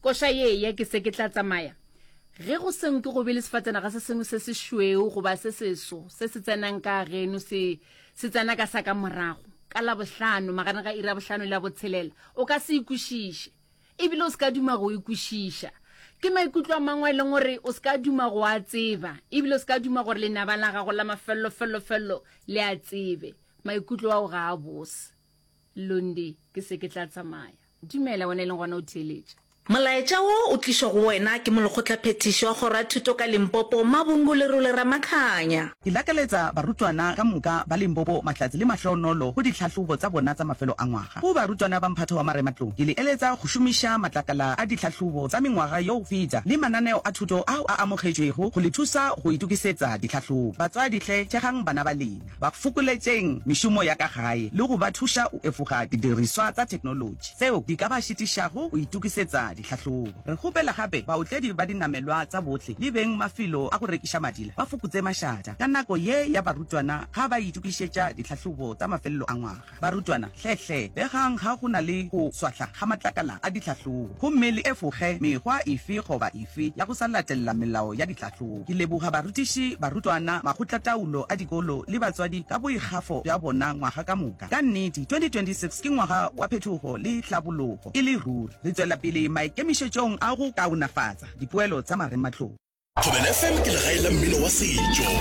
Koša ye ya ke se ke tla tsamaya. Ge go se nke go be le sefatsenaga se sengwe se sešweu goba se seso se se tsenang ka geno se, se tsena ka sa ka morago, ka Labohlano, magareng ga iri ya bohlano le ya botshelela, o ka se e kwešiše. E bile o se ka duma go e kwešiša. Ke maikutlo a mangwe a e leng gore o se ka duma go a tseba, e bile o se ka duma gore lenaba la gago la mafelelo-felelo-felelo le a tsebe. Maikutlo ao ga a bose. Lundi, Ke se ke tla tsamaya. Dumela, wena e leng gona o theeletša. Molaetša wo o tlišwa go wena ke Molekgotlaphethiši wa Kgoro ya Thuto ka Limpopo, Mabungu Lerole Ramakhanya. Ke lakaletsa barutwana ka moka ba Limpopo mahlatse le mahloonolo go ditlhahlobo tsa bona tsa mafelo a ngwaga. Go barutwana ba mphato wa marematlou, ke le eletsa go šomiša matlakala a ditlhahlobo tsa mengwaga yo go feta le mananeo a thuto ao a amogetšwego go le thusa go itokisetsa ditlhahlobo. Batswadi hle, thegang bana ba lena. ba fokoletšeng mešomo ya ka gae le go ba thuša go efoga didiriswa tsa theknolotši tšeo di ka ba šitišago go itokisetsa ditlhahlobo. Re kgopela gape baotledi ba dinamelwa tsa bohle le beng mafelo a go rekiša madila ba fokotse mašata ka nako ye ya barutwana ga ba itokišetša ditlhahlobo tsa mafelelo a ngwaga. Barutwana, hle-hle begang ga go na le go swahla ga matlakala a ditlhahlobo gomme le efoge mekgwa efe goba efe ya go sa latelela melao ya ditlhahlobo. Ke leboga barutiši, barutwana, makgotlataolo a dikolo le batswadi ka boikgafo bja bona ngwaga ka moka. Ka nnete, 2026 ke ngwaga wa phetogo le tlhabologo e le ruri. Re tšwela pele maikemišetšong a go kaonafatsa dipoelo tsa marematlou. Thobela FM ke legae la mmino wa setšo.